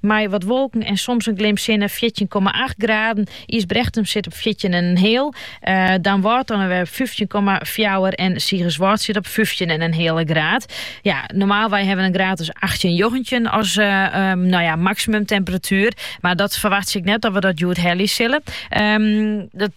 Mei wat wolken en soms in glim sinne fjirtjin komma acht graden. Ysbrechtum sit op fjirtjin en in heal. Damwâld dan wer fyftjin komma fjouwer en Sigerswâld sit op fyftjin en in heale graad. Ja, normaalwei ha we in graad as achttjin njoggentjin as no ja, maksimumtemperatuer. Mar dat ferwachtsje ik net dat we dat hjoed helje sille. Dat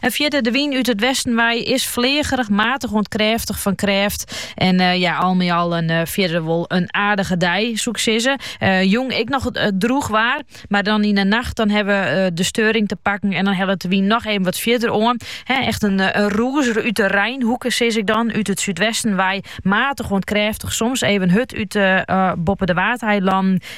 En fierder, de wyn út it westen wei is fleagerich, matich oant krêftich fan krêft. En eh, ja, al mei al in eh, fierder wol in aardige dei, soe'k sizze. Eh, jûn ek noch droech waar, mar dan yn de nacht dan ha we de steuring te pakken. En dan hellet de wyn noch even wat fierder oan. Echt in, in rûzer út de reinhoeke, sis ik dan, út it súdwesten wei. Matich oant krêftich, soms even hurd út boppe de Waadeilannen.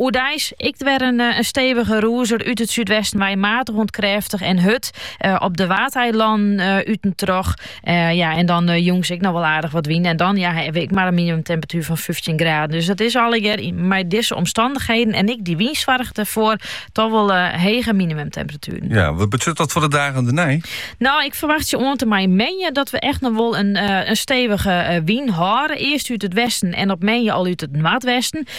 Oerdeis ek wer in stevige rûzer út it súdwesten wei, matich oant krêftich en hurd op de Waadeilannen út en troch. Ja, en dan jûns ek noch wol aardich wat wyn en dan ja, ha we ek mar in minimumtemperatuer fan fyftjin graden. Dus dat is allegear mei dizze omstannichheden en ek dy wyn soarget der foar toch wol hege minimumtemperatueren. Ja, wat betsjut dat foar de dagen dernei? Nou, ik ferwachtsje oant en mei moandei dat we echt noch wol in stevige wyn hâlde. Earst út it westen en op moandei al út it noardwesten.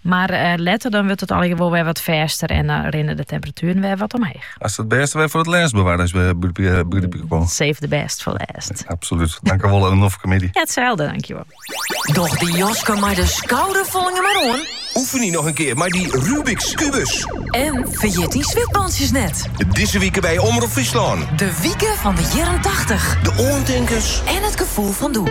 Mar letter dan wurdt it allegear wol wer wat fêster en dan rinne de temperatueren wer wat omheech. Hast it bêste wer foar it lêst bewaard as we begryp ik wol. Save the best for last. Absolút. Tankewol en noch goeiemiddei. Itselde, tankewol. Doch dyn jaske mei de skouder folgje mar oan. Oefen dy noch in kear mei dy Rubik's kubus. En ferjit dyn switbantsjes net. Dizze wike by Omrop Fryslân. De wike fan de jierren tachtich. De oantinkens. En it gefoel fan doe.